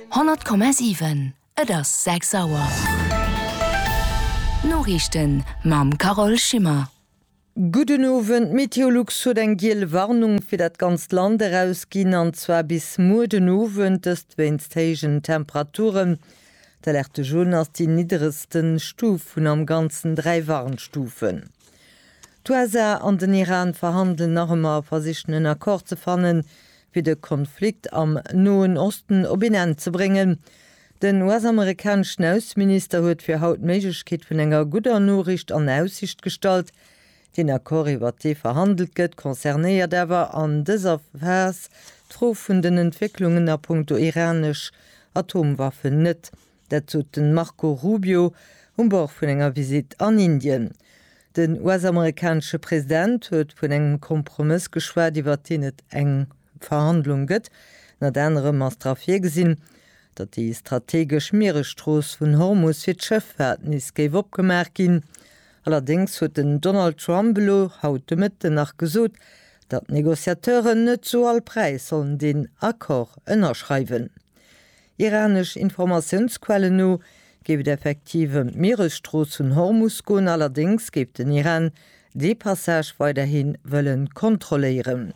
100,7 Et ass 6 Auer. D'Noriichten mam Carole Schimmer. Gudden Owend, d'Meteolux huet eng giel Warnung fir dat ganzt Land erausginn, an zwar bis muer den Owend, dëst wéinst héijen Temperaturen. D'Alerte Jaune ass déi nidderegste Stuf vun am Ganzen dräi Warnstufen. D'USA an den Iran verhandelen nach ëmmer a versichen en Accord ze fannen, fir de Konflikt am Noen Osten op een Enn ze bréngen. Den US-amerikaneschen Ausseminister huet fir haut d'Méiglechkeet vun enger gudder Noriicht an Aussicht gestallt. Deen Accord, iwwert dee verhandelt gëtt, concernéiert awer an dëser Phas d'Fro vun den Entwécklungen a punkto iranesch Atomwaffen net. Dat sot de Marco Rubio um Bord vun enger Visitt an Indien. Den US-amerikanesche President huet vun engem Kompromëss geschwat, iwwert deen et eng Verhandlung gëtt. Ënnert anerem ass dra virgesinn, datt déi strategesch Mieresstrooss vun Hormus fir d'Schëffaart nees géif opgemaach ginn. Allerdéngs huet den Donald Trump elo haut de Mëtten nach gesot, datt d'Negociateuren net zu all Präis sollen deen Accord ënnerschreiwen. Iranesch Informatiounsquellen no géif et effektiv ëm d'Mieresstrooss vun Hormus goen, allerdéngs géif den Iran dee Passage weiderhi wëlle kontrolléieren.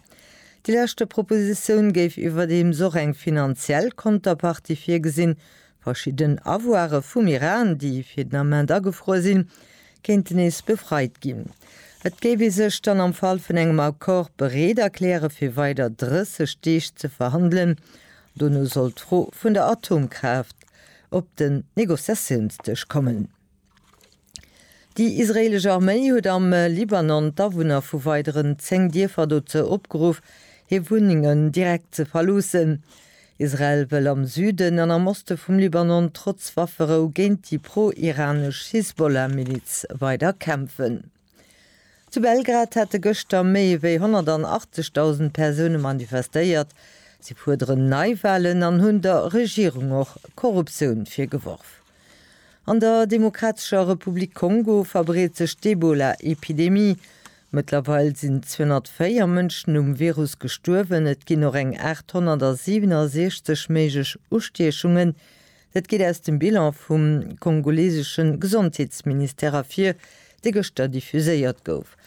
Déi leschte Propositioun géif iwwerdeems och eng finanziell Konterpartie virgesinn, verschidden Avoiren vum Iran, déi fir den Ament agefruer sinn, kéinten nees befreit ginn. Et géif ee sech dann am Fall vun engem Accord bereet erkläre fir weider 30 Deeg ze verhandelen, Dono soll d'Fro vun der Atomkraaft op den Negociatiounsdësch kommen. Déi israeelesch Arméi huet am Libanon d'Awunner vu weideren 10 Dierfer dozou opgeruff, hir Wunnengen direkt ze verloossen. Israel wëll am Süden an am Oste vum Libanon trotz Wafferou géint déi pro-iranesch Hisbollah-Miliz weider kämpfen. Zu Belgrad hate gëschter méi ewéi 180.000 Persoune manifestéiert. Si fuerderen Neiwalen an hunn der Regierung och Korruptioun virgeworf. An der Demokratescher Republik Kongo verbreet sech d'Ebola-Epidemie. Mëttlerweil sinn 204 Mënschen um Virus gestuerwen. Et ginn och eng 867 méiglech Ustiechungen Dat geet aus dem Bilan vum kongolesesche Gesondheetsministère ervir, dee gëschter diffuséiert gouf.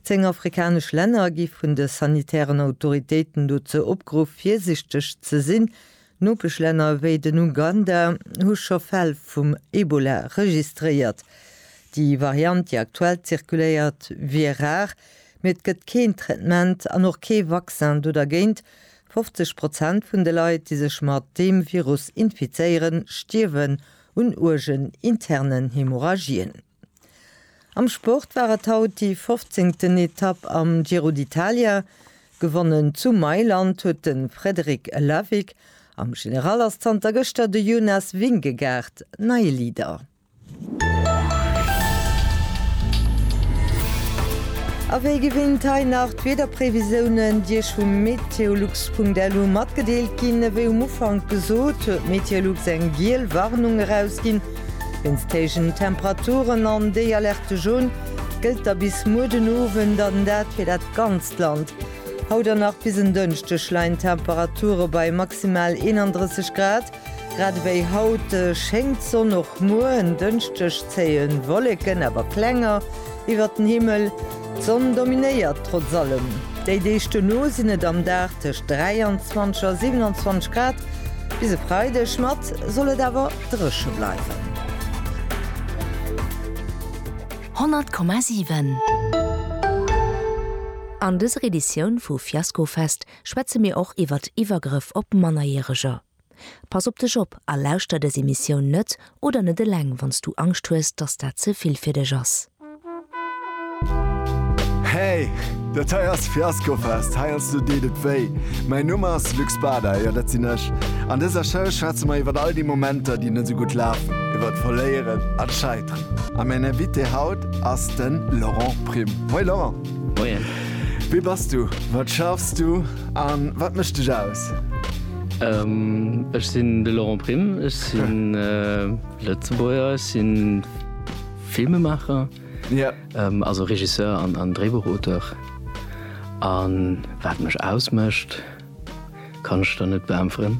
Zéng afrikanesch Länner gi vun de sanitären Autoritéiten dozou opgeruff, virsichteg ze sinn. Nopeschlänner ewéi den Uganda hu scho Fäll vum Ebola registréiert. Déi Variant, déi aktuell zirkuléiert, wier rar, mee et gëtt keen Traitement an och kee Vaccin do dergéint, 50 Prozent vun de Leit, déi sech mat deem Virus infizéieren, stierwen un uergen internen Hemorrhagien. Am Sport war et haut déi fofzéngten Etapp am Giro d'Italia. Gewonnen zu Mailand huet de Frederic Lavick. Am General ass zanter gëschter de Jonas Vingegaard neie Leader. A wéi gewinnt hei nach d'Wiederprévisiounen, déi Iech vum meteolux.lu matgedeelt ginn. Ewéi um Ufank gesot, huet Meteolux eng giel Warnung erausginn wéinst héijen Temperaturen an déi Alerte jaune gëllt da bis muer den Owend an dat fir dat ganzt Land. Haut an nach bis en Dënschdeg leien d'Temperature bei maximal 31 Grad. Grad ewéi haut schéngt d'Sonn, och muer en Dënschdeg zéie Wolleken, awer klenger, iwwert den Himmel. D'Sonn dominéiert trotz allem. Déi Deeg duerno sinn et am Dag tëscht 23 a 27 Grad. Bis e Freideg mat soll et awer dréche bleiwen. 100,7. An dëser Editioun vu Fiasco Fest schwätze mir och iwwert Iwwergrëff op Mannerjäreger. Pass op dech op a lauschter dës Emissioun net oder net eleng wann s du Angscht hues, dass dat ze vill fir dech ass. Hey! Dat hei ass Fiaskofest, heiansdo deet et wéi. Mäin Numm ass Luc Spada, jo dat sinn ech. An dëser Show schwätze mer iwwert all déi Momenter, déi net sou gutt lafen, iwwert Verléieren an Scheiteren. A mäin Invité haut ass de Laurent Prim. Hoi Laurent! Moien. Wie bass du, wat schaffs du a wat mécht dech aus? Ech sinn de Laurent Prime, ech sinn Lëtzebuerger, ech si Filmemaacher, also Regisseur an Dréibuchauteur. A wat mech ausmécht, kann ech der net beäntweren.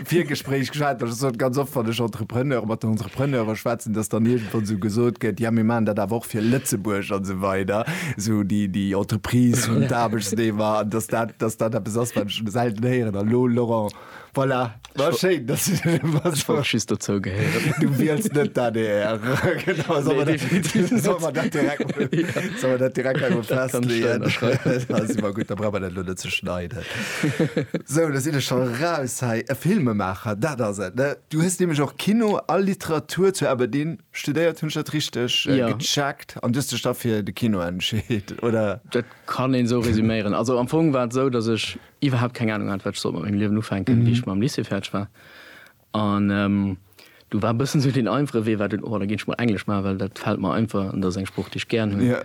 Virgespréich geschwat, dass ech sot, ganz oft, wann ech Entrepreneur, mat den Entrepreneure schwätzen, dass dann iergendwann esou gesot gëtt, ja mir maachen dat awer och fir Lëtzebuerg an esou weider, esou déi, déi Entreprise vun d'Aarbechtsnehmer, an dass dat, dass dat eppes ass, wat ech selten héieren. An elo, Laurent, voilà, war schéin, dass du dat elo machst. Ech wollt just dozou gehéieren. Du wiels net d'ADR. Genau, solle Nee, definitiv net. solle mer dat direkt, solle mer dat direkt emol Dat kann ech da festlegen. ënnerschreiwen. Dat ass ëmmer gutt, da brauche mer dat elo net ze schneiden. Sou, do sinn ech scho raus hei. E Filmemaacher, dat ass et, ne? Du hues nämlech och Kino a Literatur zu Aberdeen studéiert, hunn ech dat richteg gecheckt? An du hues dech da fir de Kino entscheet, oder? Dat kann een esou resuméieren. Also am Fong war et esou, datt ech iwwerhaapt keng Anung hat, wat ech sollt mat mengem Liewen ufänken, wéi ech mam Lycée fäerdeg war. An do war e bëssen esou deen einfache Wee war dunn, oh da ginn ech mol Englesch maachen, well dat fält mer einfach an dat ass eng Sprooch déi ech gären hunn.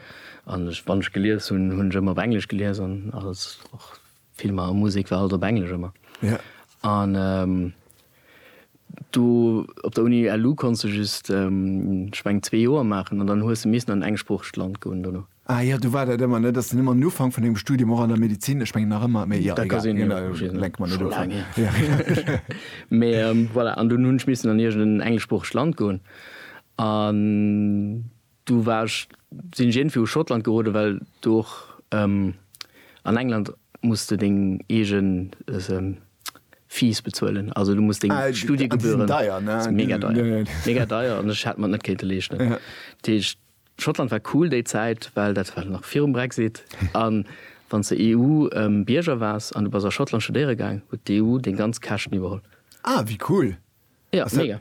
An ech, wann ech gelies hunn, hunn ech ëmmer op Englesch gelies an alles, och Filmer a Musek war alles op Englesch ëmmer. An do op der Uni LU konns de just, ech meng, zwee Joer maachen an dann hues de missen an en engsproochegt Land goen dono. Ah jo, du war dat ëmmer, ne? Dass den ëmmer um Ufank vun dengem Studium och an der Medizin, ech mengen nach ëmmer, mee jo, egal, lenke mer net of ab. Mee voilà, an dunn hunn ech missen an iergendeen engleschsproochegt Land goen an du war ech, sinn ech iergendwéi u Schottland geroden, well do och an England muss de deng eege Fees bezuelen, also du muss deng Studiegebühren. Ah, déi sinn deier, ne? Déi sinn mega deier, mega deier an ech hätt mer et net kéinte leeschten. Dat heescht, Schottland war cool déi Zäit, well dat war nach virum Brexit. A wann s de EU-Bierger waars an du bass a Schottland studéiere gaang, huet d'EU deng ganz Käschten iwwerholl. Ah, wéi cool! Ja, mega.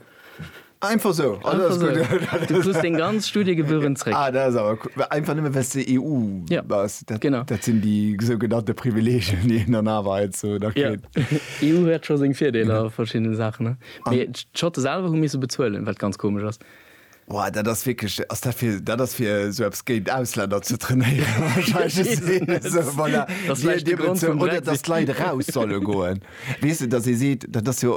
Einfach esou? Ah, dat ass gutt. Einfach esou. Du krus deng ganz Studiegebühren zréck. Ah, dat ass awer cool. Einfach nëmme well s de EU bass? Ja, genau. Dat sinn déi sougenannte Privileegien, déi een dann awer heiansdo nach kritt. Jo, EU huet scho seng Virdeeler a verschiddene Saachen, ne? Mee d'Schotte selwer hu misse bezuelen, wat ganz komesch ass. Woah, dat ass wierklech, ass dat fir, dat ass fir esou eppes géint Ausländer ze trainéieren wahrscheinlech, voilà, oder dass d'Leit eraus solle goen, weess de, dass ee seet, dat ass jo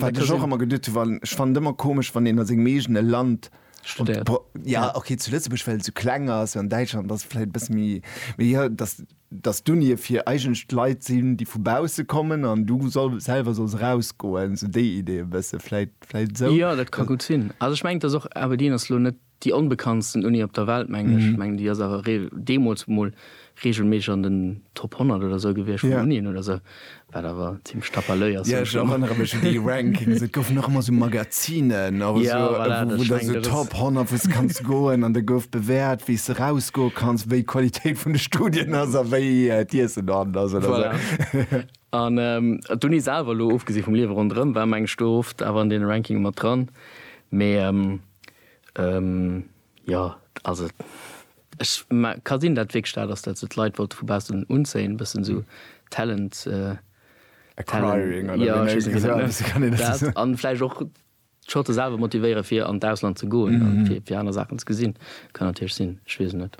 wat ech och ëmmer geduet hunn, ech fannen et ëmmer komesch, wann een a sengem eegene Land studéiert, jo, okay, zu Lëtzebuerg well et esou kleng ass, an Däitschland ass et vläicht e bësse méi, mee jo, dass. dass d'Unie fir eigentlech Leit sinn, déi vu bausse kommen an du selwer solls erausgoen, esou déi Idee e bësse vläit, vläit esou. Jo, dat ka gutt sinn. Also ech mengen, et ass och, Aberdeen ass elo net déi onbekanntsten Uni op der Welt, mengen ech. Ech mengen, déi ass awer deemools emol reegelméisseg an den Top 100 oder esou gewiescht vun Unien oder esou. Wat awer zimlech tapalöi ass. Ja, ech erënnere mech un déi Rankings. Et goufen och ëmmer sou Magazinen, awer sou, wou da sou Top 100, wou s de kanns goen an da gouf bewäert, wéi s de rausgoe kanns, wéi d'Qualitéit vun de Studien ass a wéi d'Iessen dohannen ass oder sou. An d'Uni selwer, elo ofgesi vum Liewe ronderëm, war mengen ech do oft awer an deene Rankinge mat dran. Mee jo, also. Ech mä ka sinn dat wierklech dat ass dat sou d'Leit wollte vu baussen unzéien bëssen sou Talent Acquiring oder wéi nennt een dat net dat an vläicht och d'Schotte selwer motivéieren fir an d'Ausland ze goen an fir fir aner Saachen ze gesinn kann natierlech sinn ech weess et net.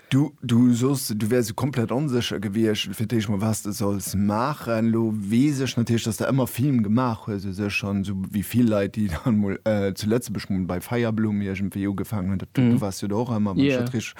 Du du soss du wäers e komplett onsécher gewiescht fir d'éischt mol wat s de solls maachen. Lo weess ech natierlech dass de ëmmer Film gemaach hues u sech an sou wéi vill Leit déi dann mol zu Lëtzebuerg mol bei Feierblumm iergendwéi ugefaangen hunn Du wars jo do och ëmmer mam Schottrisch.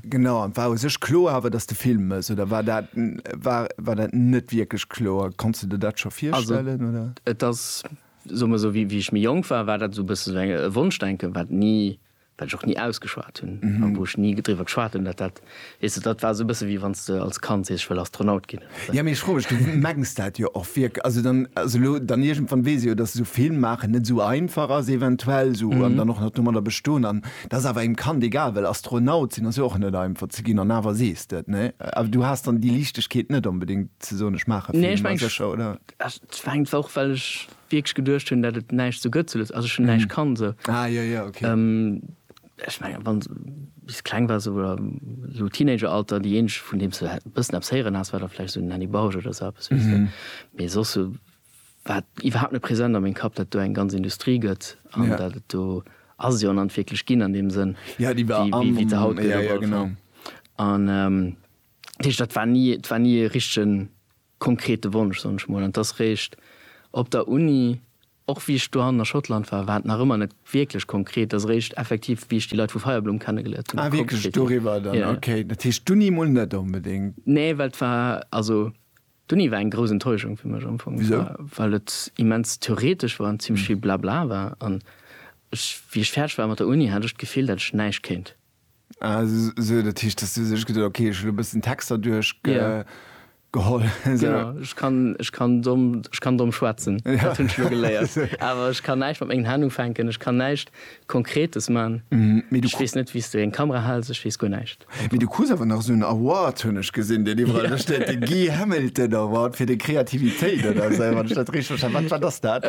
Genau, an war u sech kloer awer, datt de Film mëss, oder war dat, war dat net wierklech kloer? Konns de der dat scho virstellen, oder? Also et ass, soe mer esou, wéi ech méi jonk war, war dat esou e bësse esou e Wonschdenken, wat ni, wat ech och ni ausgeschwat hunn, a wou ech ni driwwer geschwat hunn, datt dat Weess de, dat war esou e bësse wéi wann s de als Kand sees, ech wëll Astronaut ginn. Jo, mee ech froe mech, du mengs dat jo och wierk-, also dann, also elo dann iergendwann weess ech jo, dass esou Film maachen net esou einfach ass eventuell esou, an dann och nach domadder bestoen, an et ass awer engem Kand egal, well Astronaut sinn ass jo och net einfach ze ginn, an awer sees de et, nee? Awer du has dann déi Liichtegkeet net onbedéngt ze soen, ech maache Film, ech menge sécher, oder? Et war einfach och, well ech wierklech geduecht hunn, dat et näischt esou gëtt zu Lëtz-, also ech hunn näischt kann esou. Ah, jo, jo, okay. Ech mengen, wann s bis kleng wars oder esou Teenageralter, déi eenzeg vun deem s de e bëssen eppes héieren has, war da vläicht esou den Annie Bausch oder esou eppes, weess de. Mee soss sou war et iwwerhaapt net present a mengem Kapp, datt et do eng ganz Industrie gëtt an datt et do ass et jo an an wierklech ginn an deem Sënn, wéi wéi et se haut gëtt op alle Fall. An dat heescht, dat war ni, et war ni e richtegen konkrete Wonsch, soen ech mol. An et ass réischt op der Uni, Och wéi ech dohannen a Schottland war, war et nach ëmmer net wierklech konkret. Et ass eréischt effektiv, wéi ech déi Leit vu Feierblumm kennegeléiert hunn, konkret ginn. Ah, wierklech doriwwer dann? Ja, ja. Okay, dat heescht d'Uni mol net onbedéngt. Nee, well et war, also d'Uni war eng grouss Enttäuschung fir mech am Fong. Wisou? Well et immens theoretesch war an zimmlech vill Blabla war. An ech, wéi ech fäerdeg war mat der Uni, hat ech d'Gefill, dat ech näischt kéint. Ah, esou, dat heescht, dass du sech geduet hues, okay, ech hu lo e bëssen Texter duerchgeholl. Genau, ech kann, ech kann domm, ech kann domm schwätzen, dat hunn ech lo geléiert. Awer ech kann näischt mat mengen Hänn ufänken, ech kann näischt Konkretes man. Ech weess net, wéi s de eng Kamera hals, ech weess guer näischt. Mee du krus awer nach esou en Award, hunn ech gesinn, deen iwwerall do steet, de Guy Hamilton Award fir deng Kreativitéit oder esou, wann ech dat richteg verstanen hunn. Wat, wat ass dat?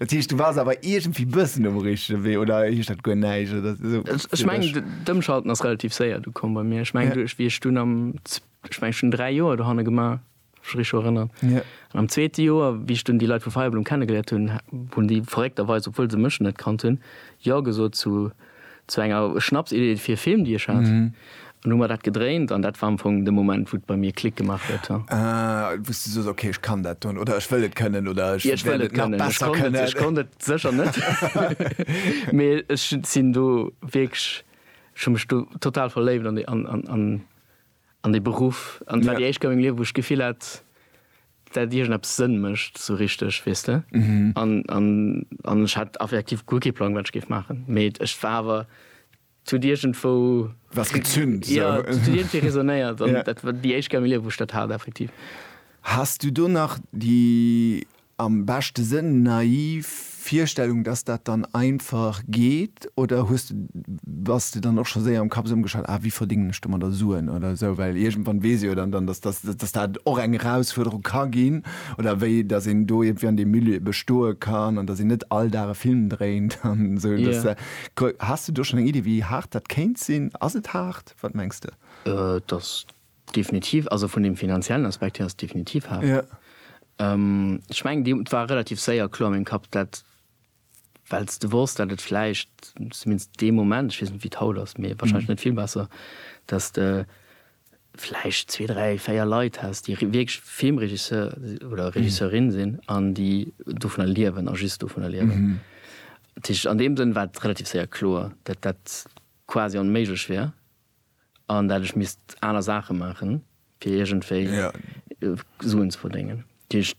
Dat heescht, du waars awer iergendwéi e bëssen um richtege Wee, oder heescht dat guer näischt? So, ech meng d'Ëmschalten ass relativ séier du komm bei mir. Ech meng duerch wie ech dun am ech meng schon 3 Joer do hanne gemaach rich erënnern. Ja. An am zweete Joer wie ech dun déi Leit vu Feierblum kennengeléiert hunn, hunn déi verréckterweis, obwuel se mech net kannt hunn, jo gesot zu zu enger Schnapsidee fir e Film déi ech hat. Mhm. An hu mer dat gedréint an dat war am Fong de Moment wou et bei mir Klick gemaach huet. Ah, wou s du soss, okay, ech kann dat doen oder ech wëll et kënnen oder ech wäert et nach besser kënnen. Ech konnt et sécher net, mee ech sinn do wierklech, ech hu mech do total verléift an dee Beruff an et war déi éischt Kéier a mengem Liewen, wou ech d'Gefill hat, dat iergendeppes Sënn mécht esou richteg, weess de. An ech hat effektiv guer kee Plang, wat ech géif maachen, mee et war awer Zu huet iergendwou. Was gezünt. Sou. Ja, et huet iergendwéi resonéiert. An dat war déi éischt Kéier a mengem Liewen, wou ech dat hat, effektiv. Has du do nach déi, am beschte Sënn, naiv Virstellung, dass dat dann einfach geet? Oder hues de, bass de dann och scho séier am Kapp esou ëmgeschalt, ah, wéi verdéngen ech domadder Suen oder esou? Well iergendwann weess ee jo dann, dann dass, dass, dass dat och eng Erausfuerderung ka ginn. Oder wéi dass een do iergendwéi an deem Milieu bestoe kann an dass een net all Dag e Film dréint an esou. Dass, Yeah. Has de do schon eng Idee wéi haart dat kéint sinn? Ass et haart? Wat mengs de? Et ass definitiv, also vun dem finanziellen Aspekt hier ass et definitiv haart. Ech mengen déi, et war relativ séier kloer a mengem Kapp dat, well s de wosst dat et vläicht, zumindest dee Moment, ech weess net wéi et haut ass, mee wahrscheinlech net vill besser, dat s de, vläicht zwee, dräi, véier Leit häss, déi wierklech Filmregisseur oder Regisseurin sinn an déi dovunner liewen a just dovunner liewen. Dat heescht, an deem Sënn war et relativ séier kloer, datt dat quasi onméiglech wär an dat ech misst aner Saache maachen, fir iergendwéi Suen ze verdéngen. Dat heescht,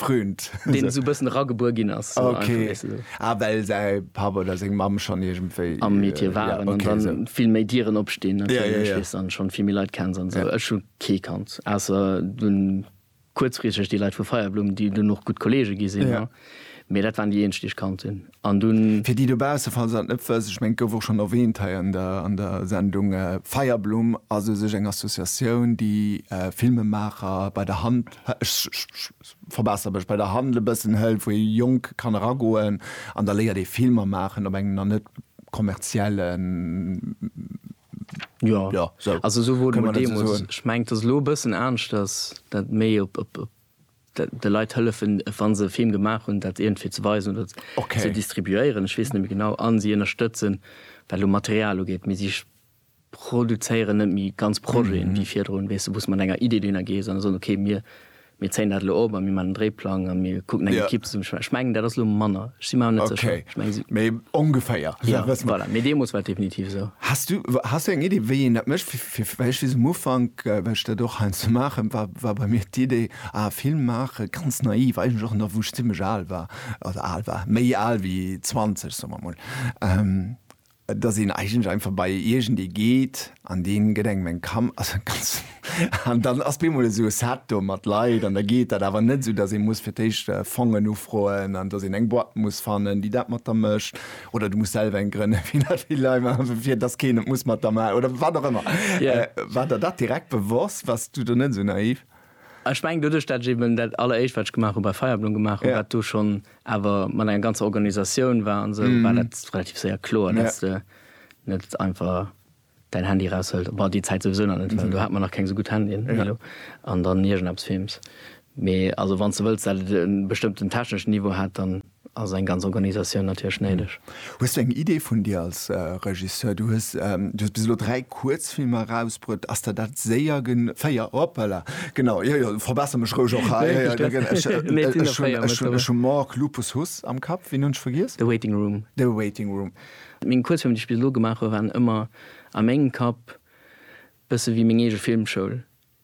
Fründ. Deen esou e bëssen eragebuer ginn ass. So okay. Einfach, weißt du, so. Ah, well säi Papp oder seng Mamm schonn iergendwéi. Am Metier äh, waren ja, okay, an dann so. vill méi Dieren opstinn. Ja, ja, ja. Weißt, an schonn vill méi Leit kenns an sou. Ja. Ech hu kee kannt. Ausser dunn kuerzfristeg déi Leit vu Feierblumm, déi dunn och gutt Kollege gi sinn. Ja. Mee dat waren déi eenzeg, déi ech kannt hunn. An dunn. Fir déi dobausse, falls se dat net wëssen, ech mengen, et gouf och schonn erwähnt hei an der, an der Sendung, Feierblumm ass u sech eng Associatioun, déi Filmemaacher bei der Hand, ech verbesser mech, bei der Hand e bëssen hëlt, wou ee Jonk kann eragoen an da léiert ee Filmer maachen op engem nach net kommerziellen, jo, sou, kënne mer dat esou soen? Jo, also esou wor dat deemools. Ech mengen, et ass elo e bëssen aneschters, dat méi op, op, op. de Leit hëllefen, wa se e Film gemaach hunn, dat iergendwéi ze weisen oder ze distribuéieren, ech weess net méi genau, a si ënnerstëtzen, wat elo Material ugeet, mee si produzéieren net méi ganz Projeten, wéi virdrun, weess de, wou s de mat enger Idee dohinner gees an soen, okay, mir zéien dat elo op a mir maachen en Dréiplang a mir kucken eng Ekipp ze. Ech mengen, dat ass elo manner, ech si mer awer net sécher, ech mengen si. Mee ongeféier. Voilà, mee deemools war et definitiv esou. Has du eng Iddi, wéi een dat mécht? Fir wéicht wéi se um Ufank, well ech dat och heiansdo maachen, war, war bei mir d'Idee, ah, Film maache ganz naiv, eigentlech och nach wou ech zimlech al war, also al war, méi al wéi 20, soe mer emol, dass een eigentlech einfach bei iergendee geet an dee gëtt engem eng Kam, also ganz, an dann ass bemol esou e Set do mat Leit an da geet dat, awer net esou, dass ee muss fir d'éischt Fongen ufroen an dass een eng Boîte muss fannen, déi dat mat der mécht. oder du muss selwer eng grënne fir dat vill Lei machen, fir dass keen et muss mat der ma oder wat och ëmmer. Ja. Äh, war der dat direkt bewosst? Wars du do net esou naiv? Ech mengen doduerch, dat ech eben dat alleréischt, wat ech gemaach hu bei Feierblom gemaach hu, Ja. wat do schonn awer mat enger ganzer Organisatioun war an esou, war dat relativ séier kloer, dass du net einfach Däin Handy raushëlt, bah déi Zäit souwisou nach net, well do hat mer nach keng esou gutt Handyen wéi elo, an dann iergendeppes films. Mee also wann s de wëlls, dat et e bestëmmten techneschen Niveau hätt, dann ass eng ganz Organisatioun natierlech néideg. Hues du eng Idee vun dir als Regisseur? Du hues bis elo dräi Kuerzfilmer erausbruet. Ass der dat séier gen. Véier, hoppala, genau, jo jo, verbesser mech roueg och hei. Ech hu Mork, Lupus, Huss am Kapp. Ween hunn ech vergiess? The Waiting Room. The Waiting Room. Meng Kuerzfilmer, déi ech bis elo gemaach hu waren ëmmer a mengem Kapp bësse wéi meng eege Filmschoul.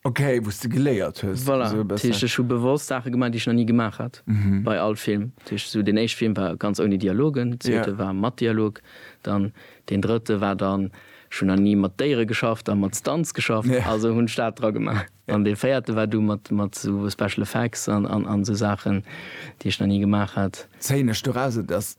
Ok, wou s de geléiert hues. Voilà, dat heescht ech hu bewosst Saache gemaach, déi ech nach ni gemaach hat bei all Film. Dat heescht esou deen éischte Film war ganz ouni Dialogen, deen zweete war mat Dialog, dann deen drëtte war dann, ech hunn nach ni mat Déiere geschafft a mat Stunts geschafft, also hunn ech dat dra gemaach. An dee véierte war du mat esou Special Effects an esou Saachen, déi ech nach ni gemaach hat. Zéien ech doraus, et ass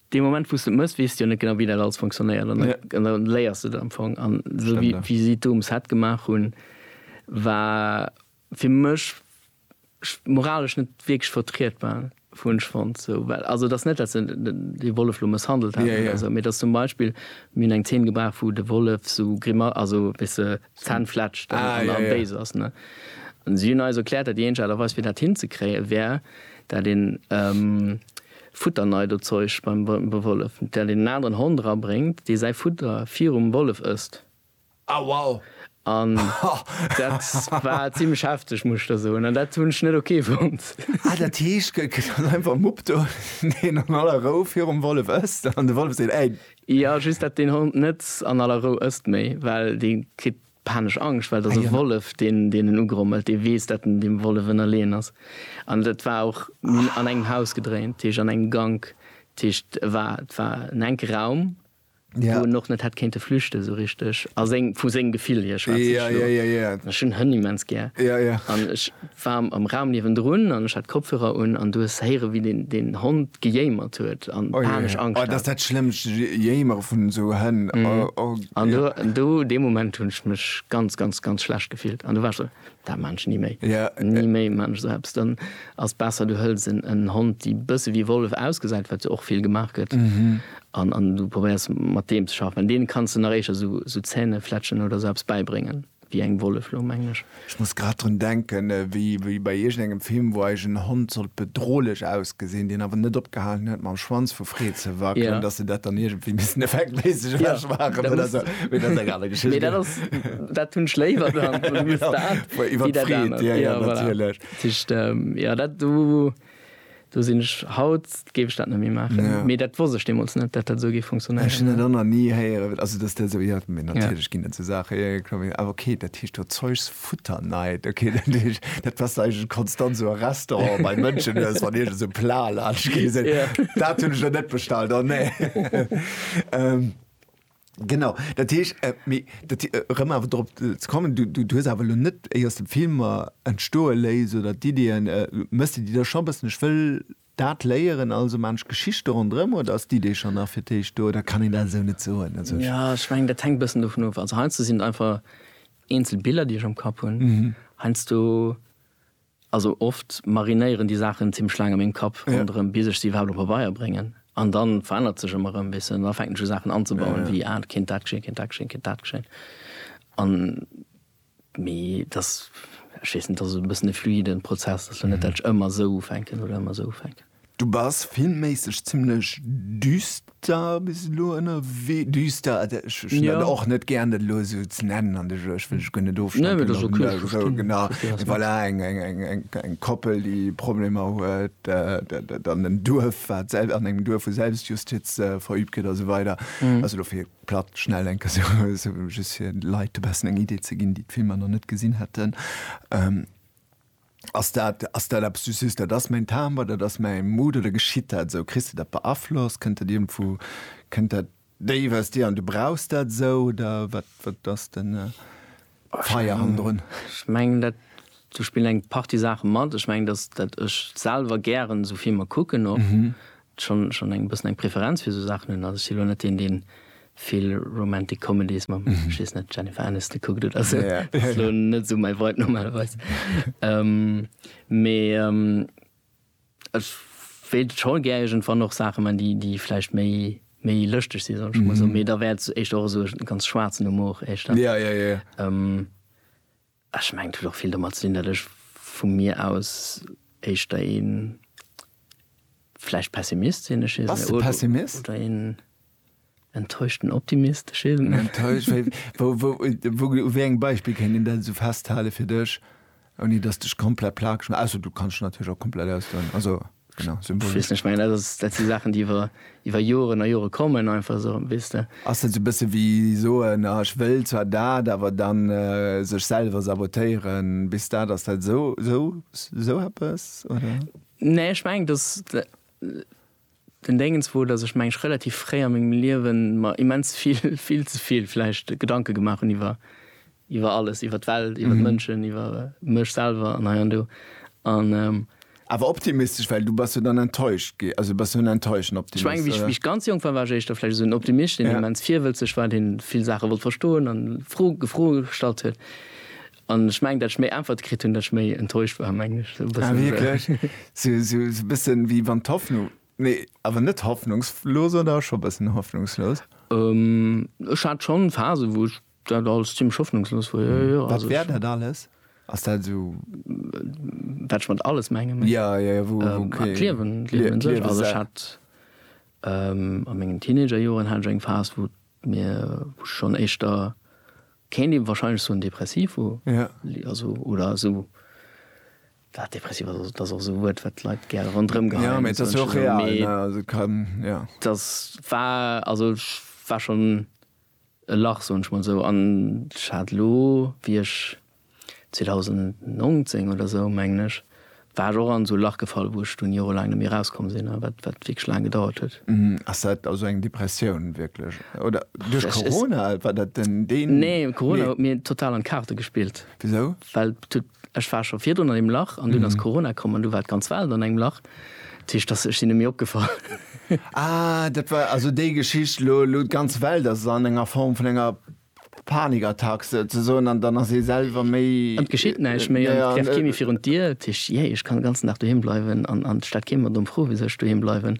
Dee Moment wou s de et mëss, weess de jo net genau wéi dat alles fonctionnéiert an da léiers de et am Fong. An esou wéi si d'Dom Set gemaach hunn, war fir mech moralesch net wierklech vertrietbar, hunn ech fonnt. Also et ass net, datt se dee Wollef elo mësshandelt hätten oder esou, mee datt zum Beispill, mir hunn eng Zeen gebraucht wou de Wollef esou, also weess de, D'Zänn fletschen an da béis ass, ne? An si hunn eis erkläert, dat déi eenzeg Aart a Weis fir dat hinzekréien, wär dat een Futterneidozeuch beim Wollef, dat een en aneren Hond rabréngt, dee säi Futter virum Wollef ësst. Ah wow! An dat war zimlech hefteg, muss ech der soen, an dat hunn ech net ok fonnt. Ah dat heescht, gëtt dann einfach Mupp do, deen an aller Rou virum Wollef ësst, an de Wollef seet, Ey! Jo just dat deen Hond net an aller Rou ësst méi well dee kritt panesch Angscht well et ass e Wollef deen deen en ugrommelt, dee weess dat en deem Wollef ënnerleeën ass an dat war och, mir hunn an engem Haus gedréint, dat heescht an engem Gank, dat heescht e war et war en enke Raum wou en och net hätt kéinte flüchte sou richteg a seng vu sengem Gefill hier schwätze ech elo an ech hunn Hënn immens gär an ech war am Raum niewendrun an ech hat Kopfhörer un an du hues héiere wéi deen deen Hond gejéimert huet an panesch Angscht hat. Oh jee, oh dat ass dat schlëmmst, Jéimere vun esou Hënn, oh. An do, do dee Moment hunn ech mech ganz, ganz, ganz schlecht gefillt an do war ech esou, dat maan ech ni méi, ni méi maan ech esou eppes. Dann ass besser du hëls en Hond déi bësse wéi Wollef ausgesäit, wat jo och vill gemaach gëtt, an du probéiers mat deem ze schaffen, well deene kanns de nach éischer esou Zähnefletschen oder esou eppes bäibréngen. Wéi eng Wollef lo, mengen ech? Ech muss grad drun denken, wéi bei iergendengem Film, wou eis en Hond sollt bedrohlech ausgesinn, deen awer net opgehalen huet mam Schwanz vu Freed ze wackelen, dass se dat dann iergendwéi missen effektméisseg ewech maachen oder sou. Mee dat ass eng aner Geschicht. Mee dat ass, dat hunn ech léiwer dann. Iwwer d'Freed, jo, jo, natierlech. Tëscht, jo, dat do. Do sinn ech, haut géif ech dat net méi maachen, mee dat wosst ech deemools net, datt dat esou géif funktionéieren. Ech hunn dat och nach ni héieren, also datt dat esou, jo, mee natierlech ginn et esou Saachen, jo, jo, kloer, awer okay, dat heescht do Zeugs futter night, okay, dat heescht, dat passt eigentlech konstant esou a Restauranten bei Mënschen, dass wann iergend esou e Plat laanscht geet, dass se soen, dat hunn ech der net bestallt, oh nee. Genau, dat heesch, äh, mee dat, äh, rëm awer drop äh, ze kommen, du, du, du hues awer lo net éi aus dem Filmer entstoe léis oder d'Ideeën, äh, méchs de déi da scho bëssen, ech wëll dat léieren, also man ech Geschichte ronderëm, oder ass d'Idee schonn nach fir d'éischt do, oder kann een dat esou net soen? Also ech. Ja, ech mengen, dat hänkt bëssen dovun of. Also heiansdo sinn et einfach eenzel Biller, déi ech am Kapp hunn. Heiansdo Also oft marinéieren déi Saachen zimlech laang a mengem Kapp ronderëm, bis ech se iwwerhaapt op Pabeier bréngen. An da verännert sech ëmmer erëm e bëssen. An da fänken ech u Saachen anzebauen, wéi, ah, et kéint dat geschéien, et kéint dat geschéien, et kéint dat geschéien. An, mee et ass, ech weess net, et ass e bëssen e fluiden Prozess. Et ass jo net, dat ech ëmmer esou ufänken oder ëmmer esou ufänken. Du bass filmméisseg zimlech düster bis elo ënnerwee. Düster, ech hunn dat Ja. och net gären, dat elo esou ze nennen an de Jeu. Ech wëll dech guer net Nee, ofstempelen. mee dat ass okay, ech Esou, verstinn, genau. verstinn, was du mengst. Voilà, eng, eng, eng, eng, eng Koppel, déi Problemer huet, dat, dat an en Duerf, wat selb, an engem Duerf, wou Selbstjustiz verübt gëtt a sou weider. Also elo fir platt schnell eng Kéier esou, esou just fir de Leit e bessen eng Idee ze ginn, déi d'Filmer nach net gesinn hätten. Ass dat, ass dat eppes, du sees, dat ass mäin Timbre, dat ass mäi Mood, oder geschitt dat esou? Kriss de dat beaflosst? Kënnt dat iergendwou, kënnt dat déif aus dir an du brauchs dat esou, oder wat, wat ass de Feier hannendrun? Ech mengen dat, do spillen eng Partie Saache mat. Ech mengen, datt ech selwer gären esou Filmer kucken och. schonn schonn eng bëssen eng Preferenz fir esou Saachen hunn. Also ech si lo net deen, deen vill Romantic Comedies mam, ech weess net, Jennifer Aniston kuckt oder esou. Dat ass lo net esou mäi Vibe normalerweis. Mee ech wéilt scho gär iergendwann och Saache man, déi déi vläicht méi méi lëschteg si soll ech emol soen. Mee da wär et éischter och esou e ganz schwaarzen Humor éischter. Ech mengen et huet och vill domat ze dinn, datt ech vu mir aus éischter ee vläicht Pessimist sinn. Ech weess net. Pessimist? Oder een enttäuschten Optimist. Ech weess et net. Enttäuscht? U wéi engem Beispill kéint een dat esou festhalen fir dech, ouni datt s de dech komplett plagesch maachen? Ausser du kanns dech natierlech och komplett ausdoen. Also. Genau, Symboliek. Weess net, ech mengen, dat ass, dat si Saachen, déi iwwer, iwwer Joren a Jore kommen, einfach esou, weess de. Ass dat esou e bësse wéi soen, ah ech wëll zwar dat, awer dann sech selwer sabotéieren, bis dat, ass dat esou, esou, esou eppes, oder? Nee, ech mengen, dass den Déngens wor, dass ech, meng ech, relativ fréi a mengem Liewen mer immens vill, vill ze vill vläicht Gedanke gemaach hunn iwwer Iwwer alles, iwwer d'Welt, iwwer d'Mënschen, iwwer mech selwer an hei an do. An. Awer optimistesch, well du bass jo dann enttäuscht gi, also bass jo en enttäuschten Optimist, oder? Ech menge, wéi ech ganz jonk war, war ech éischter vläicht esou en Optimist, deen immens virwëlzeg war, dee vill Saache wollt verstoen an Fro, Gefro gestallt huet. An ech mengen, dat ech méi Äntwerte kritt hunn, dat ech méi enttäuscht war, mengen ech. Esou e bëssen. Ah, wierklech? Esou, esou e bësse wéi wann d'Hoffnung, nee, awer net hoffnungslos, oder scho e bëssen hoffnungslos? Ech hat schonn Phasen, wou ech Dat alles zimmlech hoffnungslos wor, jo, jo. Wat wär dat alles? Ass dat esou. Wat ech mat alles menge méi. Jo, jo, jo, wou, wou, okay. D'Liewen, d'Liewen un sech. Also ech hat a mengen Teenagerjoren hat ech eng Phas, wou mir, wou ech schonn éischter, kéint ee wahrscheinlech soen, depressiv wor. Jo. Also, oder esou, well depressiv ass, dat ass och esou e Wuert, wat d'Leit gär ronderëm geheien. Jo, mee et ass jo och real, ne? Also et kann, jo. Dat war, also ech war schonn. E Lach, soen ech mol esou. An ech hat elo, wéi ech 2019 oder esou, mengen ech, war ech och an esou e Lach gefall, wou ech dunn jorelaang net méi erauskomm sinn a wat wierklech laang gedauert huet. Ass dat also eng Depressioun wierklech? Oder duerch Corona? War dat den. Nee, Corona huet mir total an d'Kaarte gespillt. Wisou? Well et huet Ech war scho virdrun an deem Lach an dunn ass Corona komm an du war d'ganz Welt an engem Lach. Dat heescht, dass, ech sinn net méi opgefall. Ah, dat war also déi Geschicht, elo, elo d'ganz Welt ass an enger Form vun enger Panikattack souzesoen an dann ass ee selwer méi. An et geschitt näischt méi an et trefft kee méi virun d'Dier. Dat heescht, jee, ech kann de ganzen Dag doheem bleiwen an et stellt kee mer domm Fro, wisou ech doheem bleiwen.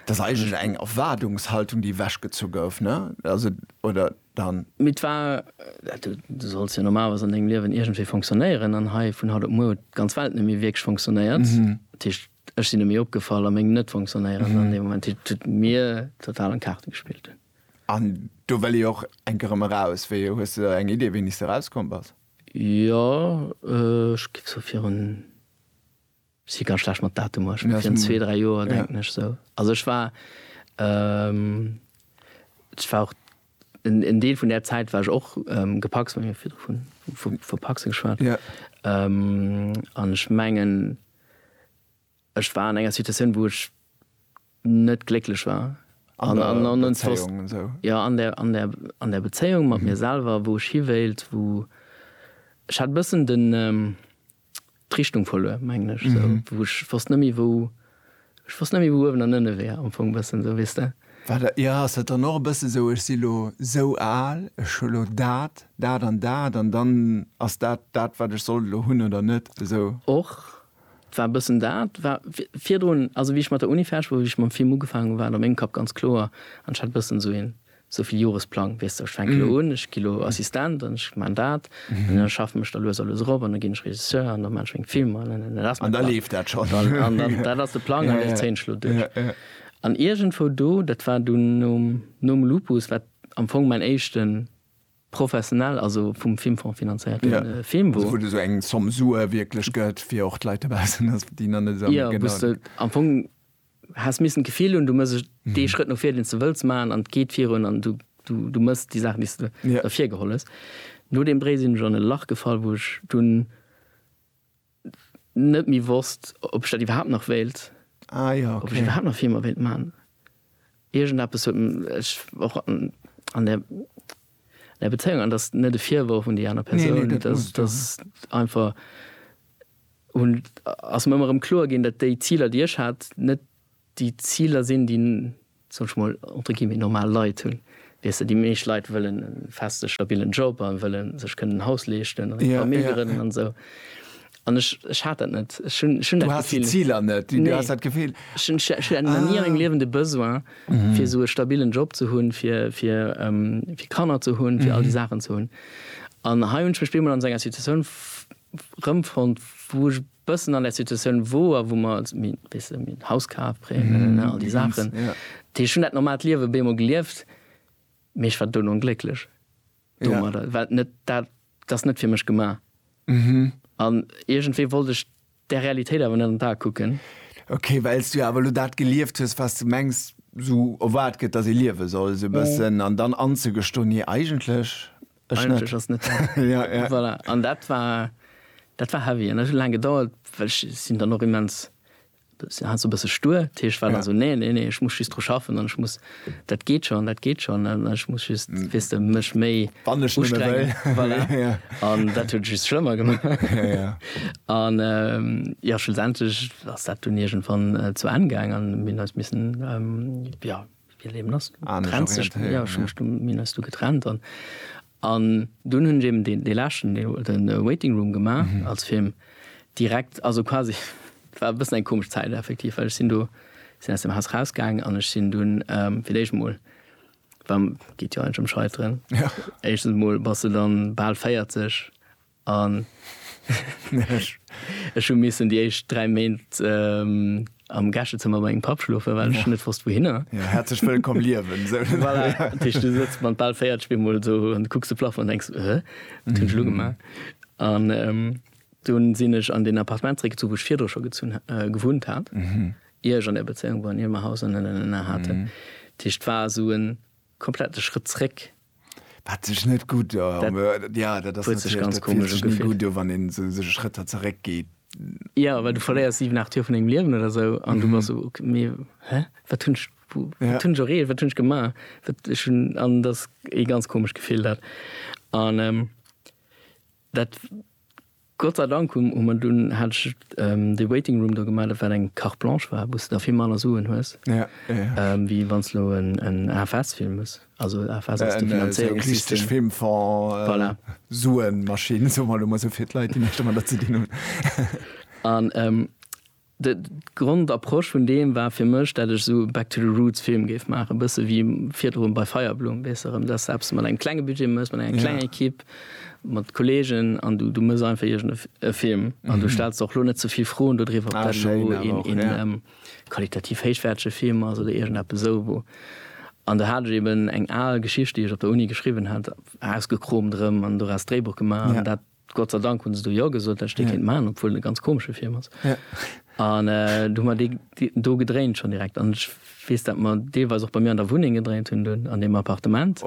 Dat ass eigentlech eng Erwaardungshaltung, déi ewechgezu gouf, ne? Also, oder? dann. Mee 't war, du solls jo normalerweis an dengem Liewen iergendwéi fonctionnéieren, an hei vun haut op muer huet d'ganz Welt net méi wierklech fonctionnéiert. Dat heescht, ech sinn net méi opgefall a meng Net-Fonctionnéieren an deem Moment. Dat heescht, et huet mir total an d'Kaarte gespillt. An do wëll ee och enk erëm eraus. Wéi, hues de eng Idee, wéini s de erauskomm bass? Jo, ech géif sou virun Si ganz schlecht mat Datumer, ech menge virun zwee, dräi Joer denken ech esou. Also ech war, ech war och, en Deel vun där Zäit war ech och gepacst, mir hu virdru vun vu Pacse geschwat. An ech mengen, ech war an enger Situatioun, wou ech net glécklech war. An der Bezéiung an sou? Jo, an der, an der, an der Bezéiung mat mir selwer, wou ech hiwéilt, wou, ech hat e bëssen den, d'Richtung verluer mengen ech sou mhm. wou ech fast nëmmi wou ech fast nëmmi wou uewen an ënne wär am Fong bëssen sou wisst der Warte, ja ass dat dann och e bësse sou ech si lo sou al ech hu lo dat dat an dat an dann ass dat dat wat ech soll lo hunn oder net sou och war bëssen dat war virdrun also wie ich mat der Uni fäsch wou ich mam Film ugefaangen war am eng Kapp ganz kloer an hat bëssen sou hin Sou vill Joresplang, weess de, ech fänke lo un, ech gi lo Assistent an ech maan dat an da schaffen ech da lues a lues erop an da ginn ech Regisseur an da maan ech meng Filmer an da dat ass mäin Plang. An da leeft dat schonn. Dat ass de Plang an dee zéien ech lo duerch. An iergendwou do, dat war dunn nom Lupus, wat am Fong mäin éischte professionell, also vum Filmfong finanzéierte Film wor. Also wou de sou eng Somme Sue wierklech gëtt, fir och d'Leit dobaussen, déi nach net esou genau. Jo, wou s de am Fong. Häss missen d'Gefill hunn, du mëss dee Schrëtt no vir, deen s de wëlls maachen, an et geet virun, an du mëss déi Saach, déi s de ervir geholl hues. No deem Bréi sinn ech an e Lach gefall, wou ech dunn net méi wosst, ob ech dat iwwerhaapt nach wéilt, ob ech iwwerhaapt nach Filmer wéilt maachen. Iergendeppes huet ech och an der Nei Bezéiung, an dat ass net e Virworf un déi aner Persoun, dat ass einfach, hunn, ass mir ëmmer erëm kloer ginn, datt déi Ziler, déi ech hat, net déi Ziler sinn, déi, soll ech mol, entre guillemets, normal Leit hunn. Weess de, déi meescht Leit wëllen e feste, stabilen Job a wëlle sech kënnen en Haus leeschten, a Famill grënnen an esou. An ech, ech hat dat net. Ech hunn, ech hunn Du dat has déi Gefill. Ziler net. Du Nee. has dat Gefill. Ech hunn, ech hat nach ni a mengem Liewen de Besoin, fir esou e stabilen Job ze hunn, fir, fir, ähm, fir Kanner ze hunn, fir all déi Saachen ze hunn. An hei hunn ech mech bemol an esou enger Situatioun f-, rëmfonnt, wou ech bëssen an där Situatioun wor, wou mer, mi, weess de, mir Haus kaf, Prêt, ne, ne, ne, all déi Saachen. Ja. Déi, ech hunn dat normaalt Liewe bemol gelieft, mee ech war dono onglécklech Ja. domadder, well net dat Dat ass net fir mech gemaach. An iergendwéi wollt ech där Realitéit awer net an d'Ae kucken. Ok, well s du jo awer elo dat gelieft hues, wat s du mengs, esou erwaart gëtt, datt ee liewe soll, esou e bëssen. An dann anzegestoen, Nee, eigentlech ech net. Eigentlech ass net dat. Voilà. An dat war, dat war heavy. An dat huet laang gedauert, well ech sinn dann och immens Si hat sou bësse stur, dat heescht, war dann sou, nee, nee, nee, ech muss just dru schaffen an ech muss, dat geet schonn, dat geet schonn an ech muss just, weess de, mech méi ustrengen. Voilà. An dat huet et just schlëmmer gemaach. An jo, schlussendlech ass dat dunn iergendwann zu Enn gaang an mir hunn eis missen, jo, wéi et eben ass, du trenns dech, jo, ech hu mech du, mir hunn eis du getrennt an, An dunn hunn ech eben dee, dee leschten Deel, de Waiting Room gemaach als Film direkt, also quasi, et war e bëssen eng komesch Zäit effektiv, well ech sinn do, sinn aus dem Haus rausgaangen an ech sinn dunn fir d'éischt emol, well geet jo eigentlech ëm Scheiteren, éischtens emol bass de dann bal 40, An ech hu missen déi éischt 3 Méint am Gäschezëmmer bei mengem Papp schlofen, well ech net wosst wouhinner. Jo, häerzlech wëllkomm liewen! Voilà, dat heescht, du sëtz mat bal 40 bemol esou an kucks de Plafong an denks, Ëh, wat hunn ech elo gemaach? An dunn sinn ech an deen Appartement zeréckgezu wou ech virdru scho gezunn, gewunnt hat, ier ech an där Bezéiung war an ier mer Haus an. Haten. Dat heescht, et war esou en. komplett de Schrëtt zréck. Wat sech net gutt do wann een esou sech Schrëtter zeréck geet. Jo, well du verléiers 7, 8 Joer vun dengem Liewen oder esou an du bass esou, ok mee hä, wat hunn ech, wat hunn ech erreecht, wat hunn ech gemaach? Wat ech hunn, an dat ass ee ganz komescht Gefill dat. An dat. Gott sei Dank hu mer dunn, hat ech dee Waiting Room do gemellt, wat eng Carte Blanche war, wou s de da vill manner Suen hues, wéi wann s elo en AFS Film hues. Also AFS ass de Finanzéierungssystem. Voilà. Suenmaschinn, soe mer elo mol esou fir d'Leit, déi näischt domadder ze dinn hunn. An D' Grondapproche vun deem war fir mech, dat ech esou Back to the Roots Film géif maachen, e bësse wéi virdrun bei Feierblumm, weess de, rëm dass de eppes mat engem klenge Budget méchs, mat enger klenger Ekipp, mat Kolleegen an du du méchs einfach iergend e Film an du stells der och lo net ze vill Froen dodriwwer, ob dat elo een qualitativ héichwäertege Film ass oder iergendeppes esou, wou. An do hat ech eeben eng al Geschicht, déi ech op der Uni geschriwwen hat, ausgekromt erëm an doraus d'Dréibuch gemaach an dat. Gott sei Dank hunn se do Jo gesot, well ech dee kéint maachen, obwuel en e ganz komesche Film ass. An du hu mer dee do gedréint schonn direkt. An ech weess, dat mer deelweis och bei mir an der Wunneng gedréint hunn dunn, an deem Appartement,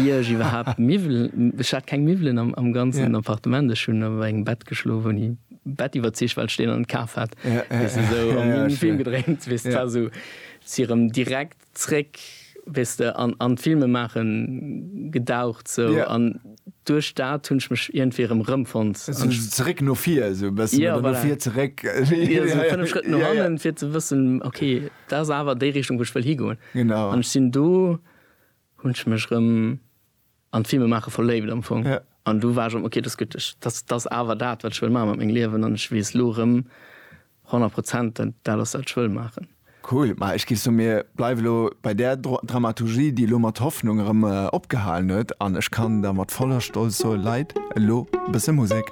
ier ech iwwerhaapt Miwwel, ech hat keng Miwwelen am ganzen Appartement, ech hunn op engem Bett geschlof, hunn ee Bett iwwerzicht, well ech deen an kaf hat, weess de, esou, a mir hunn e Film gedréint, weess de, et war esou, si erëm direkt Zréck, weess de, an an d'Filmemaache gedaucht sou. Yeah. An duerch dat hunn ech mech iergendwéi erëm rëmfonnt. Sou zeréck no vir esou e bëssen. Yeah, voilà. Oder no vir zeréck. Jo, sou fënnef Schrëtt no hannen, yeah, yeah. fir ze wëssen, ok, dat ass awer déi Richtung, wou ech wëll higoen. Genau. An ech sinn do, hunn ech mech erëm. an d'Filme maache verléift am Fong. Ja. An du war ech am, ok, dat ass gutt, ech, dat, dat ass awer dat, wat ech wëll maache mat mengem Liewen an ech weess elo erëm 100 Prozent, dat, dat ass dat, wat ech wëll maachen. Cool. Ma ech géif soen, mir bleiwe lo bei där Dro Dramaturgie, déi elo mat Hoffnung erëm opgehalen huet an ech kann da mat voller Stolz soen, Leit, elo e bësse Musek.